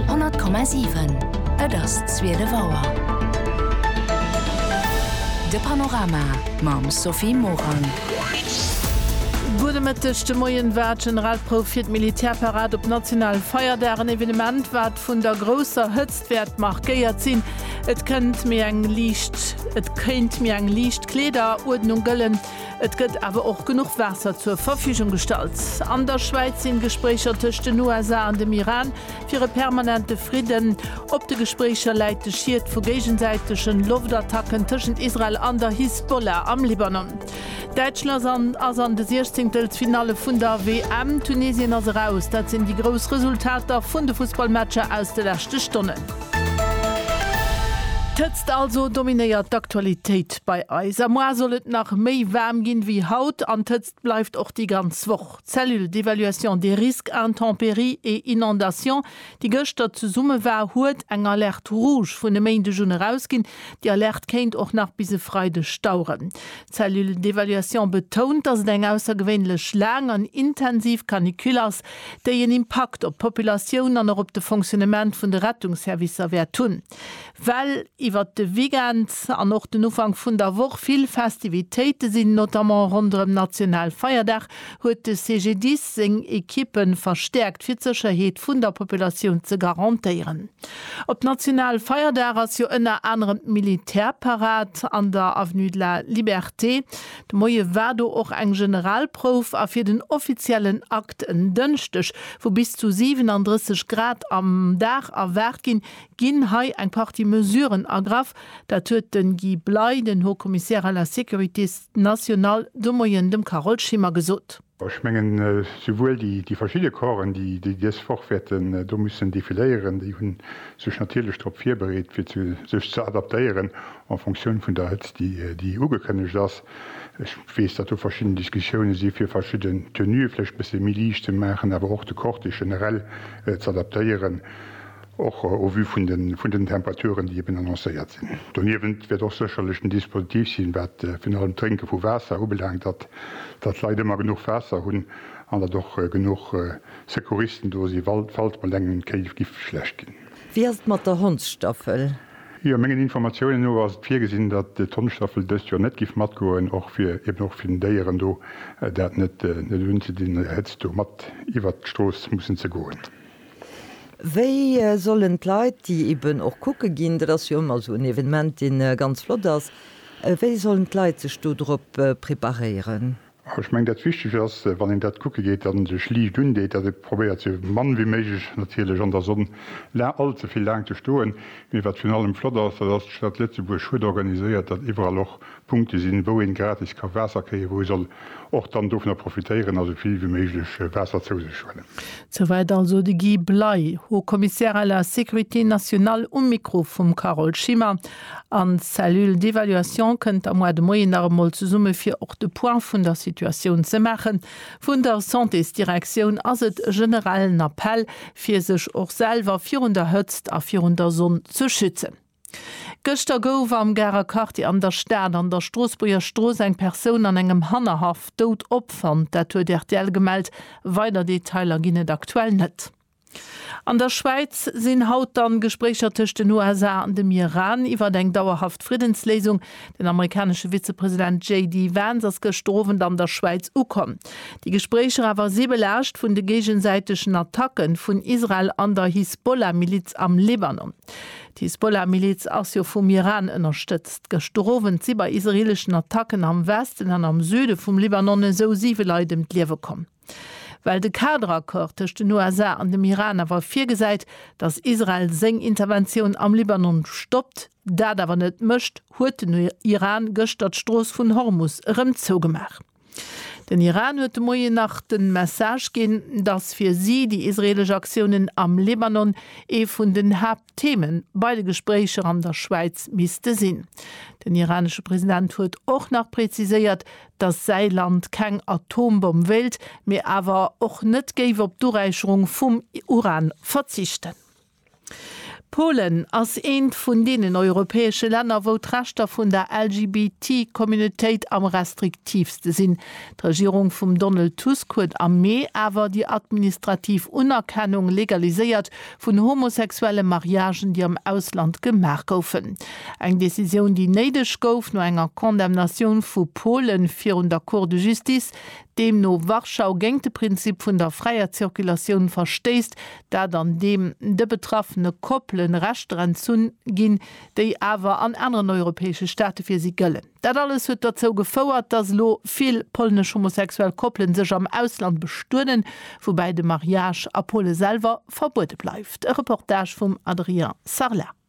100,7 Et ass zwielef Auer. De Panorama mam Sophie Morang. Gudde Mëtteg. De Moien war d'Generalprouf fir d'Militärparad op nationalen Feierdag. En Evenement, wat vun der grousser Hëtzt wäert markéiert sinn. Et kënnt méi eng liicht Kleederuerdnung gëllen. Et gëtt awer och genuch Waasser zur Verfügung gestallt. An der Schwäiz sinn Gespréicher tëscht den USA an dem Iran fir e permanente Fridden. Op de Gespréicher läit de Schied vu géigesäitegen Loftattacken tëschent Israel an der Hisbollah am Libanon. Däitschland ass an de Siechzéngtelsfinalle vun der WM. Tunesien ass eraus. Dat sinn déi grouss Resultater vun de Fussballmatcher aus de leschte Stonnen. D'Hëtzt also dominéiert d'Aktualitéit. Bei eis am Mois soll et nach méi waarm ginn ewéi haut an d'Hëtzt bleift och déi ganz Woch. D'Cellule d'évaluation des risques intempéries et inondations, déi gëschter zesumme war, huet eng Alerte rouge vun e Méindeg un erausginn. Déi Alerte kéint och nach bis e Freideg daueren. D'Cellule d'évaluation betount, dass et eng aussergewéinlech laang an intensiv Canicule ass, déi en Impakt op d'Populatioun an och op de Fonctionnement vun de Rettungsservicer wäert hunn. Well iwwert de Weekend an och den Ufank vun der Woch vill Festivitéite sinn, notamment ronderëm Nationalfeierdag, huet de CGDIS seng Ekippe verstäerkt, fir d'Sécherheet vun der Populatioun ze garantéieren. Op Nationalfeierdag ass jo ënner anerem d'Militärparad an der Avenue de la Liberté. De Moie war do och eng Generalprouf a fir den offiziellen Akt en Dënschdeg, wou bis zu 37 Grad am Dag erwaart ginn, ginn hei eng Partie Mesuren ergraff, dat huet de Guy Bley, den Haut Commissaire à la sécurité nationale, de Moien dem Carole Schimmer gesot. Ech mengen, souwuel déi verschidde Corpsen, déi dës Woch wäerten do mussen defiléieren, déi hu sech natierlech drop virbereet, fir sech ze adaptéieren en fonction vun der Hëtzt, déi ugekënnegt ass. Ech weess, datt do verschidden Diskussioune si fir verschidden Tenuë vläicht e bësse méi liicht ze maachen, awer och de Cortège generell z'adaptéieren. och au vu vun den Temperaturen, déi eben annoncéiert sinn. Doniewent wäert och sécherlech den Dispositif sinn, wat virun allem d'Drénke vu Waasser ubelaangt, datt d'Leit ëmmer genuch Waasser hunn an datt och genuch Secouristen do si falls mol engem d'Kéi giff schlecht ginn. Wéi ass et mat der Hondsstaffel? Jo, mengen Informatiounen no ass et virgesinn, datt d'Hondstaffel dëst Joer net giff matgoen, och fir eben och fir den Déieren do dat net unzedinn, Hëtzt do mat iwwert d'Strooss mussen ze goen. Wéi sollen d'Leit, déi eben och kucke ginn, dat ass jo ëmmer esou en Evenement, dee ganz flott ass, wéi sollen d'Leit sech do drop preparéieren? Ech mengen, dat Wichtegt ass, wann een dat kucke geet an sech liicht undeet, datt ee probéiert esou mann wéi méiglech natierlech an der Sonn all ze vill laang ze stoen. Mee wat virun allem flott ass, dat ass, d'Stad Lëtzebuerg huet organiséiert, datt iwwerall och Punkte sinn, wou een gratis ka Waasser kréien, wou ee soll och dann dovunner profitéieren a sou vill wéi méiglech Waasser zou sech huelen. Souwäit also de Guy Bley, Haut Commissaire à la Sécurité nationale um Mikro vum Carole Schimmer. An d'Cellule d'évaluation kënnt da muar de Moien nach emol zesumme fir och de Point vun der Situatioun ze maachen. Vun der Santésdirektioun ass et e generellen Appell fir sech och selwer virun der Hëtzt a virun der Sonn ze schützen. Gëschter gouf am Garer Quartier an der Stad an der Stroossbuerger Strooss eng Persoun an engem Hannerhaff dout opfonnt. Dat huet rtl gemellt. Weider Detailer ginn et aktuell net. An der Schwäiz sinn haut dann d'Gespréicher tëscht den USA an dem Iran iwwert eng dauerhaft Friddensléisung. Den amerikanesche Vizepresident JD Vance ass gëschter Owend an der Schwäiz ukomm. Déi Gespréicher awer si belaascht vun de géigesäitegen Attacken vun Israel an der Hisbollah-Miliz am Libanon. D'Hisbollah-Miliz ass jo vum Iran ënnerstëtzt. Gëschter Owend si bei israeeleschen Attacken am Westen an am Süde vum Libanon esou siwe Leit ëm d'Liewe komm. Well de Kader-Accord tëscht den USA an dem Iran awer virgesäit, datt Israel seng Interventioun am Libanon stoppt, dat awer net mécht, huet den Iran gëschter d'Strooss vun Hormus erëm zougemaach. Den Iran huet de Moien nach de Message ginn, datt fir si déi israeelesch Aktiounen am Libanon ee vun den Haapttheme bei de Gespréicher an der Schwäiz misste sinn. Den iranesche President huet och nach preziséiert, datt säi Land keng Atombomm wéilt, mee awer och net géif op d'Uräicherung vum Uran verzichten. Polen ass eent vun deenen europäesche Länner, wou d'Rechter vun der LGBT-Communautéit am restriktiivste sinn. D'Regierung vum Donald Tusk huet am Mee awer déi administrativ Unerkennung legaliséiert vun homosexuelle Mariagen, déi am Ausland gemaach goufen. Eng Decisioun, déi néideg gouf no enger Condamnatioun vu Polen virun der Cour de Justice, deemno Warschau géint de Prinzip vun der fräier Zirkulatioun verstéisst, dat an deem de betraffene Koppelen Rechter entzunn ginn, déi awer an aneren europäesche Staate fir si gëllen. Dat alles huet derzou gefouert, dass elo vill polnesch homosexuell Koppelen sech am Ausland bestueden, woubäi de Mariage a Pole selwer verbuede bleift. E Reportage vum Adrien Sarlat.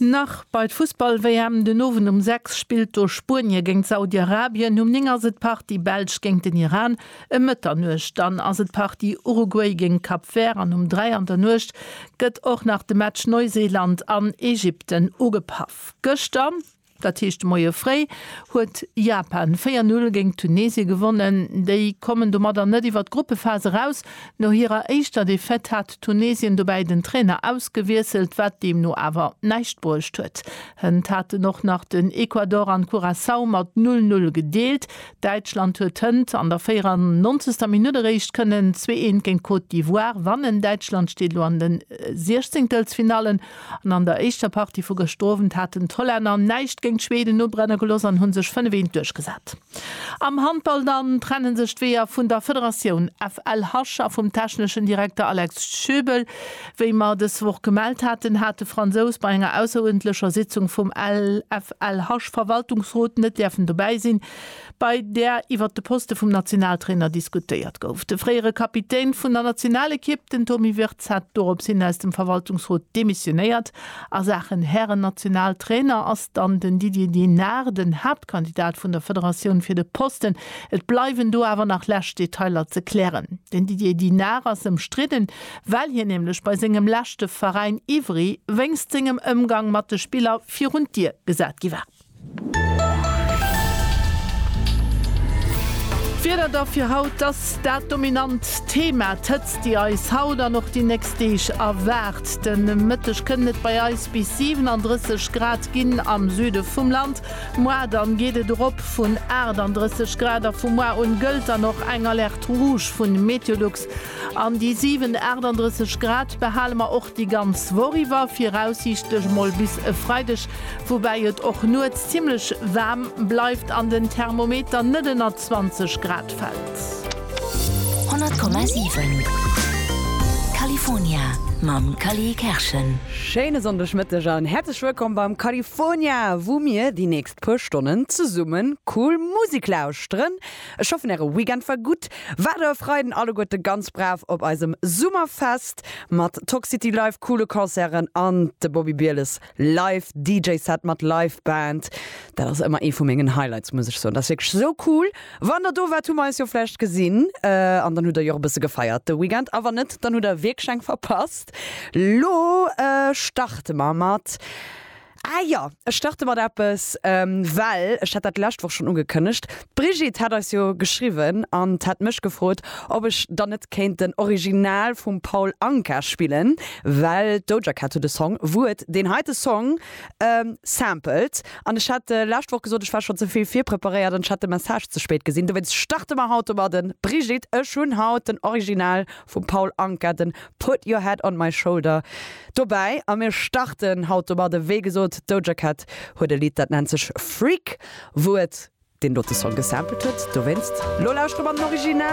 Nach bei d'Fussball-WM, den Owend um 6 spillt do Spuenie géint Saudi-Arabien, um 9 ass et d'Partie Belsch géint den Iran, ëm Mëtternuecht dann ass et d'Partie Uruguay géint Cap Vert an um 3 an der Nuecht gëtt och nach de Match Neuseeland an Ägypten ugepaff. Gëschter, dat heescht de Moie fréi, huet Japan 4, 0 géint Tunesien gewonnen. Déi kommen domadder net iwwer d'Gruppephas eraus. No hirer éischter Defaite hat Tunesien dobäi den Trainer ausgewiesselt, wat deemno awer näischt bruecht huet. Hënt haten och nach den Ecuador an Curaçao mat null null gedeelt. Däitschland huet hënt an der 94. Minutt eréischt kënnen zwee eent géint Côte d'Ivoire wannen. Däitschland steet elo an de Siechzenktelfinallen an an der éischter Partie vu gëschter Owend haten d'Hollänner näischt géint d'Schweden ubrennen geloss an hu sech fënnef eent duerchgesat. Am Handball dann trenne sech d'Weeër vun der Federatioun FLH a vum techneschen Direkter Alex Schöbel. Wéi mer dës Woch gemellt haten, hat de Fransous bei enger ausseruerdentlecher Sitzung vum FLH-Verwaltungsrot net däerfen dobäi sinn, bei där iwwer de Poste vum Nationaltrainer diskutéiert gouf. De fréiere Kapitän vun der Nationalekipp, den Tomi Wirtz. Schmidt hat dorops hin aus dem Verwaltungsrot demissionéiert. A Saachen Hären-Nationaltrainer ass dann den Didier Dinard den Haaptkandidat vun der Federatioun fir de Posten. Et bleiwen do awer nach lescht Detailer ze klären. Den Didier Dinard ass ëmstridden, well hien nämlech bei sengem leschte Veräin Ivry wéinst sengem Ëmgang mat de Spiller virun d'Dier gesat gi war. D'Wieder da fir haut, dass dat dominant Thema, d'Hëtzt déi eis haut an och déi nächst Deeg erwaart. De Mëtteg kënnt et bei eis bis 37 Grad ginn am Süde vum Land, moar dann geet et erop vun 38 Grad a vu moar un gëllt dann och eng Alerte Rouge vun Meteolux. An déi 7,38 Grad behale mer och déi ganz Woch iwwer, viraussiichtlech emol bis e Freideg, woubäi et och nuets zimmlech waarm bleift an den Thermometer net ënner 20 Grad fält. 100,7 California mam Cally Kerschen. Schéine Sonndegmëtteg an häerzlech wëllkomm beim California, wou mir déi nächst puer Stonnen zesummen cool Musek lauschteren. Ech hoffen äre Weekend war gutt. Waart der e Freiden alleguerte ganz brav op eisem Summerfest mat Toxcity Live, coole Concerten an de Bobby Bieles Live DJ Set mat Live Band. Dat ass ëmmer ee vu mengen Highlights muss ech soen. Dat ass wierklech esou cool. Wann der do waart hu mer eis jo vläicht gesinn an dann hutt der jo och e bësse gefeiert de Weekend a wann net dann hutt der wierklech eng verpasst. Lo starte mer mat Ah jo, ech starte mat eppes, well ech hat dat d'lescht Woch schonn ugekënnegt. D'Brigitte hat eis jo geschriwwen an hat mech gefrot, ob ech dann net kéint den Original vum Paul Anka spillen, well d'Doja Cat huet e Song, wou et deen heite Song sampelt. An ech hat d'lescht Woch gesot, ech war schonn ze vill virpreparéiert an ech hat de Message ze spéit gesinn. Dowéinst starte mer haut domadden. Brigitte, ech hunn haut den Original vum Paul Anka, den Put Your Head On My Shoulder dobäi a mir starten haut domadde. Wéi gesot, d'Doja Cat huet e Lidd, dat nennt sech Freak, wou et deen dote Song gesampelt huet. Dowéinst lo lauschteren mer den Original.